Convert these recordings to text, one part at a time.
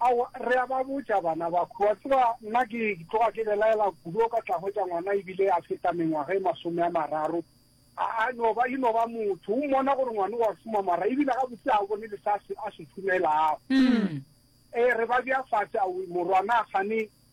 Aowa, re a ba botša bana ba khu. Wa tseba, nna ke tloga ke belaela kudu o ka tla hwetša ngwana e bile a feta mengwaga e masome a mararo, a, a no ba, e no ba motho. O mmona gore ngwana o a šoma mara e bile gabotse ga o bone le se a se, a se šomelago. Ee, re ba bea fase, a morwana, gane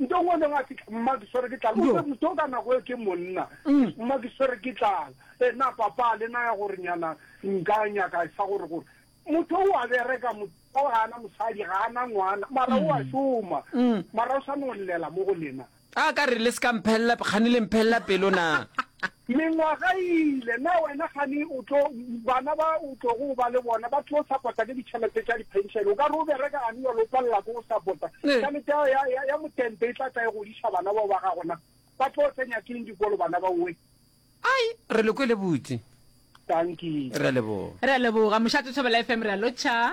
Ntong o neng a fihla, Mma, ke swere ke tlala. O se motho o ka nako eo ke monna. Mma, ke swere ke tlala. E, na Papa a le naya gore nyana nka nyaka sa gore, gore, Motho o a bereka, motho o ga ana mosadi, ga ana ngwana, mara o a šoma. Mara o sa no llela mo go lena. A ka re, Le se ka mphelela, kgane le mphelela pelo na? Mengwaga e ile, na wena gane o tlo, bana ba o tlogo o ba le bona ba tlo sapota ke ditšhelete tša diphenšene? O ka re o bereka gane bjalo o palela ke go sapota? Tšhelete ya, ya, ya, ya motente e tla tla e godiša bana bao ba gago na? Ba tlo tsenya keng dikolo bana ba owe? Ai, re le kwele botse. Dankie. Re a leboga. Re a leboga. Mošate Thobela FM, re a lotšha.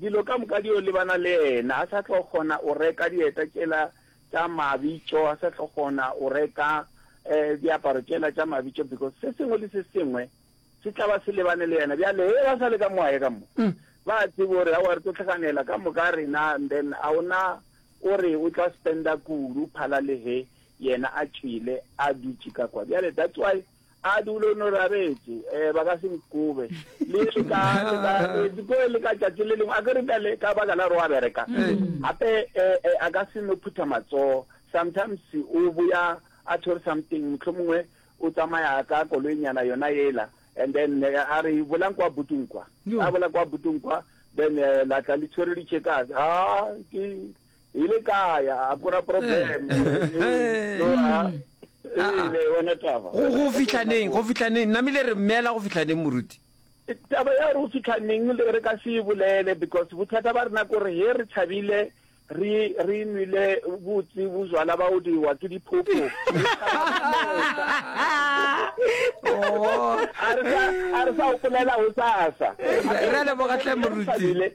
Dilo ka moka di yo lebana le yena, a sa tlo kgona go reka dieta tšela tša mabitso, a sa tlo kgona go reka diaparo tšela tša mabitso because se sengwe le se sengwe se tla ba se lebane le yena. Bjale he ba sa le ka mo a ye ka mo, ba a tseba gore aowa re tlo hlaganela ka moka rena and then a ona o re o tla spenda kudu phala le he yena a tšwele a dutše ka kwa. Bjale that's why a dule o no rabetse um ba ka se nkobe le le ka dikoe le ka tšatši le lengwe a ke re bjale ka baka la gore wa bereka mm. gape um a ka se no phutha matsogo sometimes o boya a tshwere something motlho mongwe o tsamaya ka koloenyana yona ela and then eh, a re bolang kwa butong kwa a bola kwa butong kwa then eh, la tla le tshwere ditšhekase a ke ile kaya akura problem go fitlhaneng go fitlhaneng namile re mmeela go fitlhaneng moruti taba ya re o fitlhaneng re ka se e bolele because bothata ba rena kore he re tšhabile re re nwile botse bojwala ba o diwa ke diphopho a re sa o polela go sasa re lebogatlhe moruti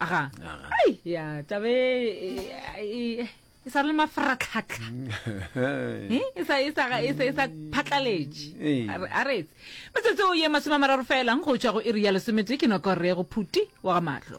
aga ai ya tabe e sa le mafaratlhatlha e sa e sa e sa e sa phatlaletše a retse metsotso o ye masome a mararo felang go tšwa go iri ya lesometee ke noko re go phuti wa ga mahlo